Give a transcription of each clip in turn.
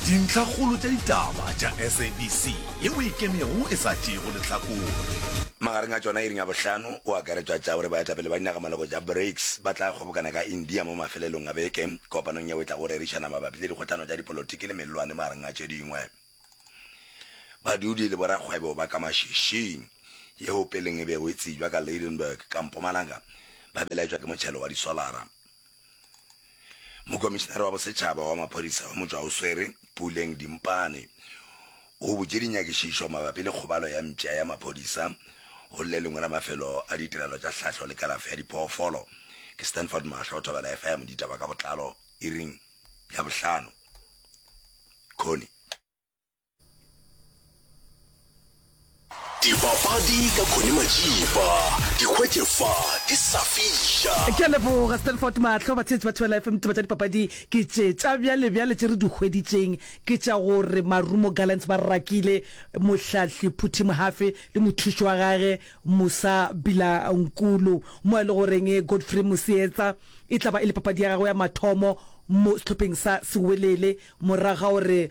Dintlhakgolo tša ditaba tša SABC ye o e kemego e sa tšeego lehlakore. Magareng a tšona iring ya bohlano o akaretšwa tša gore baetapele ba dinagamaloko tša BRICS ba tla kgobokana ka India mo mafelelong a beke kopanong yeo e tlago go rerišana mabapi le dikgohlano tša dipolotiki le mellwane magareng a tše dingwe badudi le borakgwebo ba ka mašešing yeo peleng e bego e tsebjwa ka Lydenburg ka Mpumalanga ba belaetšwa ke motšhelo wa disolara. Mokomišinare wa Bosetšhaba wa Maphodisa wa motšwa o swere, Puleng Dimpane, o butše dinyakišišo mabapi le kgobalo ya mpša ya maphodisa go le lengwe la mafelo a ditirelo tša tlhahlo le kalafo ya diphoofolo ke Stanford Mahlo Thobela FM Ditaba ka botlalo iring ya bohlano Connie Dibapadi ka Connie Majiba, di hwetše fa di sa fiša. Ke a leboga Stanford Mahlo. Batheetši ba Thobela FM, ditaba tša dipapadi ke tše tša bjale bjale tše re di hweditšeng ke tša gore Marumo Gallants ba rakile mohlahli Phuthi Mohafe le mothuši wa gage Musa Bilankulu mo e le goreng Godfrey Mosietsa e tla ba e le papadi ya gagwe ya mathomo mo sehlopheng sa Sewelele morago ga gore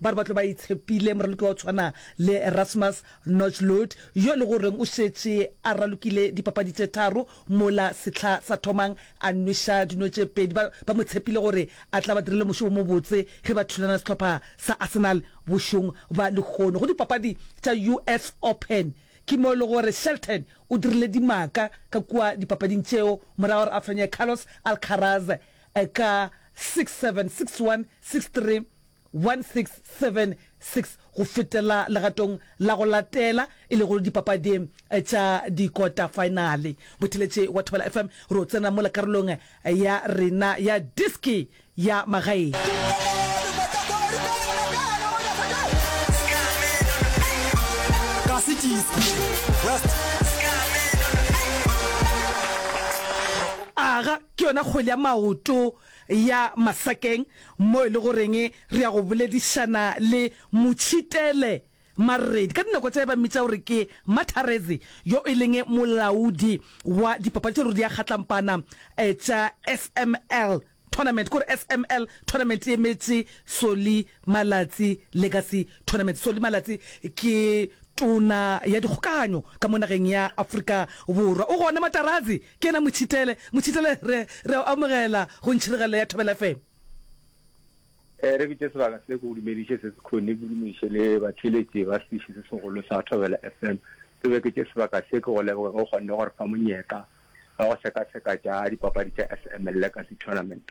Ba re ba tlo ba itshepile moraloki wa go tshwana le Rasmus Nojlund yo e le goreng o šetše a ralokile dipapadi tše tharo mola sehla sa thomang a nweša dino tše pedi. Ba ba mo tshepile gore a tla ba direla mošo wo mobotse ge ba thulana le sehlopha sa Arsenal bošong bja lehono go dipapadi tša US Open. Ke mo e le gore Shelton o dirile dimaka ka kua dipapading tšeo morago ga gore a fenye Carlos Alcaraz ka six, seven, six, one, six, three, 1676 go fetela legatong la go latela e lego dipapading tša dikota-faenale. Botheletše wa Thobela FM re o tsena mola karolong ya rena ya Diski ya Magaeng. Aga ke yona kgwele ya maoto ya Masakeng mo e le goreng re ya go boledišana le Motšhitele Maredi, ka dinako tše ba mmitša gore ke Matharezi, yo e leng molaodi wa dipapatšo di a kgatlampana tša SML Tournament, ke gore SML Tournament e emetše Solly Malatsi Legacy Tournament. Solly Malatsi ke tona ya dikgokaganyo ka mo nageng ya Afrika Borwa. O gona Matarazi? Ke yena Mothitele. Mothitele, re, re a o amogela go Ntšhiregelelo ya Thobela FM. Ee, re bitše sebaka se, ke go dumediše se se khone, ke dumediše le batheeletši ba sediši se segolo sa Thobela FM. Ke beketše sebaka se, ke go leboge ge o kgonne go re fa monyetla wa go sekaseka tša dipapadi tša FMLLegacy Tournament.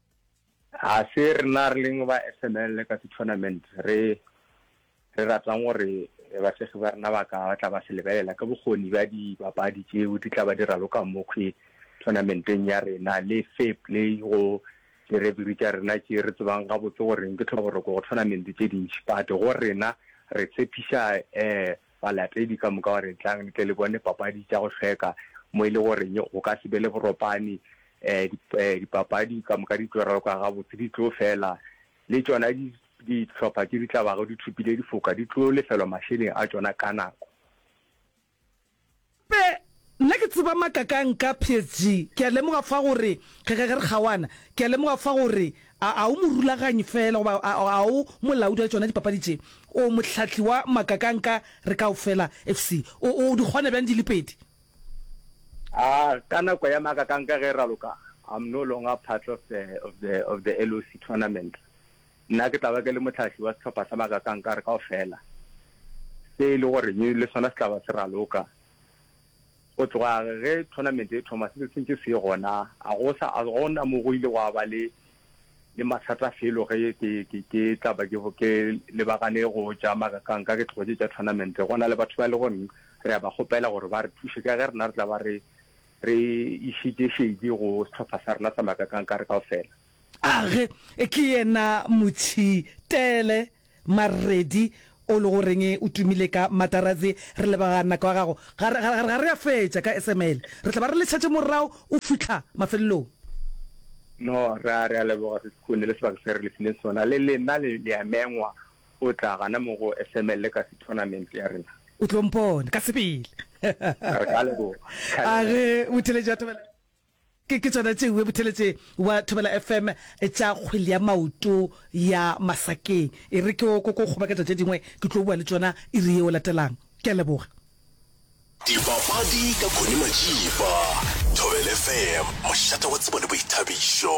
Ga se rena re leng ba SML le Kasi Tournament re re ratang gore basegi ba rena ba ka ba tla ba se lebelela ka bokgoni bja dibapadi tšeo di tla ba di raloka mokhwi tournamenteng ya rena le fair play go direbiri tša rena tše re tsebang gabotse goreng ke tlhoboroko go tournament tše dintši but go rena re tshepiša um Balatedi ka moka ba re, Tlang le tle le bone dipapadi tša go hlweka mo e le goreng go ka se be le boropane. Dipapadi ka moka di tlo raloka gabotse, di tlo fela, le tšona dihlopha tše di tla bago di thopile difoka di tlo lefelwa mašeleng a tšona ka nako. Pe, Nna ke tseba makakang ka PSG. Ke a lemoga fa gore, ge, ge, ge re kgaoana, ke a lemoga fa gore, a, a o morulaganyi feela, goba a, a, a o molaodi wa tšona dipapadi tše, o mohlahli wa makakang ka re kaofela, fc. O, o di kgona bjang di le pedi? A, ka nako ya makakang ka ge e raloka, I'm no longer part of the, of the, of the LOC tournament. Nna ke tla ba ke le mohlahli wa sehlopha sa magakankare kaofela, se e le gore le sona se tla ba se raloka. Go tloga ge thonamente e thoma, se se ntše se ye gona. A go sa, a go na mo go ile gwa ba le le mathata felo ge ke ke ke tla ba ke ke lebagane go tša magakanka, ke tlogetše tša thonamente. Go na le batho ba e le goreng re a ba kgopela gore ba re thuše ka ge rena re tla ba re re išitše šedi go sehlopha sa rena sa magakankare kaofela. A re ke yena Motšhitele Maredi o le go reng o tumile ka Matarazzi. Re leboga nako ya gago. Ga re, ga re, ga re a fetša ka SML. Re tla ba re le šetše morago o fihla mafelelong. No, re a, re a leboga Ses'Khune le sebaka se re le fileng sona. Le lena le, le a mengwa go tla gana mo go SML ka sethonamente ya rena. O tlo mpona ka sebele. Re ka leboga. A re, Mothileja Thobela. Ke ke tsona tše webutheletse wa Thobela FM tša kgwele ya maoto ya Masakeng. E re ke oko ko kgobaketša tše dingwe ke tlo bua le tšona iri yeo latelang. Ke a leboga. Dipapadi ka Connie Matšipa, Thobela FM, mošate wa tsebo le boithabišo.